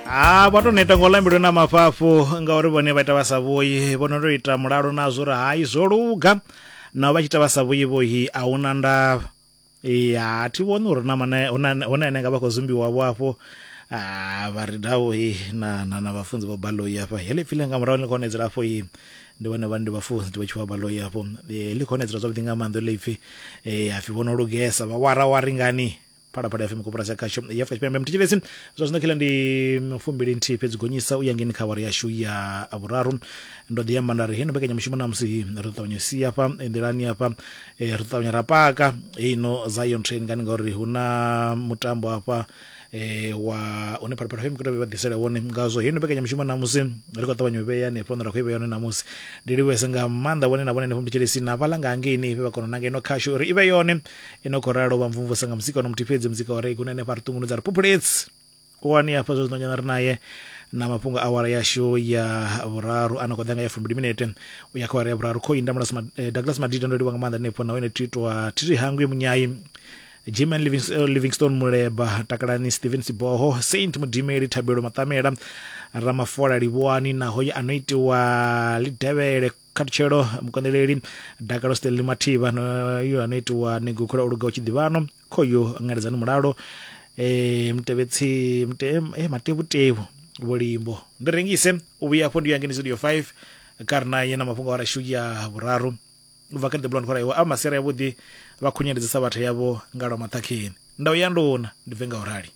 ha vha to neta ngo lambelwe na mafhafhu ngauri vhone vha ita vha sa vhuyi vhono to ita mulalo nazwo uri hai zwo luga nao vha tshi ita vha sa vhuyi vhohi a huna ndavha ya thi vhoni uri na mana hune ane nga vha khou zumbiwa vho afho Ah, vha ri dawo he na na na vhafunzi vho baloi afha he ḽipfile nga murahu ḽi khou nedzela afho he ndi vhone vhani ndi vhafunzi ndi vha tshi vha baloi afho Eh, ḽi khou nedzela zwavhuḓi nga maanḓa ḽipfi um hapfi vho no lugesa vha wara wari ngani phalaphala fm kopora dza khasho ya afrika tshipembe mthetshelesi zwa zwino khela ndi mfumbili nthihi fhedzi gonyisa u ya ngeni kha wari yashu ya vhuraru ndo ḓi amba nda ri heno mbekanyamushumo namusi hi ri ṱavhanya si hafha nḓilani hafha eh, ri ṱavhanya ra paka heino zion train ngani ngauri hu na mutambo hafha eh, wa une phalaphala fm kutobe vha ḓisela wone ngazwo heino mbekanyamushumo namusi ri khou ṱavhanya u vhea hanefho hune ra khou i vhea hone namusi ndi livhuese nga maanḓa vhone na vhone henefho mthetshelesi na vhala nga hangeini vhe vha kona u nanga ino khashu uri i vhe yone i no khou ralo vha mvumvusa nga muzika ono muthihi fhedzi muzika wa rei kune hanefha ri ṱungunudza ri phuphuledzi wani hafha zwa zwino nyana ri naye na mafhungo awara yashu ya vhuraru a no khou ḓa nga ya fumbili minete u ya kha awara ya vhuraru khou inda Douglas Mad- eh, douglas madida ndo livha nga maanḓa hanefho na wene titwa thiri hangwi munyayi jiman Livings- eh, livingstone muleba takalani stephen siboho saint mudimeli thabelo maṱamela ramafola livhuwani naho ye a no itiwa lidevhele khatutshelo mukoneleli dakalo stanley mathiba no yo ano itiwa ni gukhula u luga u tshi ḓivhano khoyo ngaledzani mulalo eh mutevhetsi mute eh matevhutevu vhulimbo ndi rengise u vhuya afho ndi ya ngeni studio 5 kha ri naye na mafhungo a rashu ya vhuraru u bva kha the blond khora iwe a masera yavhuḓi vha khunyeledzisa vhathu yavho nga lwa maṱhakheni ndau ya nduna ndi bve nga u rali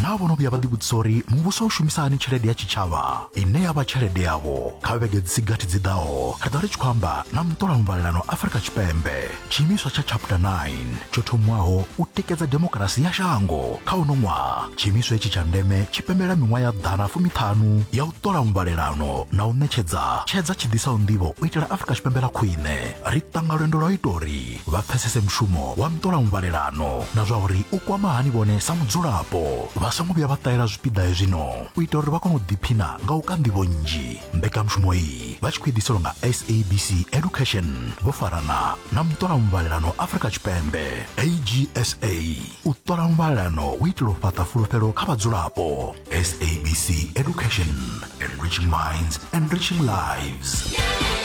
naa vhono vhuya vha ḓivhudzisa uri muvhuso u shumisa hani tshelede ya tshitshavha ine ya vha tshelede yavho kha vhege dzi si gathi dzi ḓaho ri ḓo ri tshi khou amba na muṱola muvhalelano afurika tshipembe tshiimiswa tsha chapter 9 tsho thomiwaho u tikedza demokarasi ya shango kha uno ṅwaha tshiimiswa itshi tsha ndeme tshi pembelela miṅwaha ya ḓana fumiṱhanu ya u ṱola muvhalelano na u ṋetshedza tshedza tshi ḓisaho nḓivho u itela afurika tshipembe ḽa khwine ri ṱanga lwendo lwa u ita uri vha pfesese mushumo wa nṱolamuvhalelano na zwa uri u kwama hani vhone sa mudzulapo vha songo vhuya vha ṱahela zwipiḓa hezwino u itela uri vha kone u ḓiphina nga u ka nḓivho nnzhi mbekanyamushumo iyi vha tshi khou eḓiselwa nga sabc education vho farana na muṱolamuvhalelano afrika tshipembe agsa u ṱola muvhalelano u itela u fhaṱa fulufhelo kha vhadzulapo sabc education enriching minds enriching lives yeah.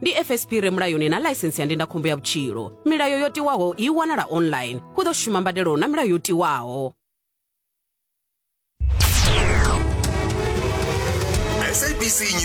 ndi fsp re mulayoni na ḽaisensi ya ndindakhombo ya vhutshilo milayo yo tiwaho i wanala online hu ḓo shuma mbadelo na milayo yo tiwaho SABC News.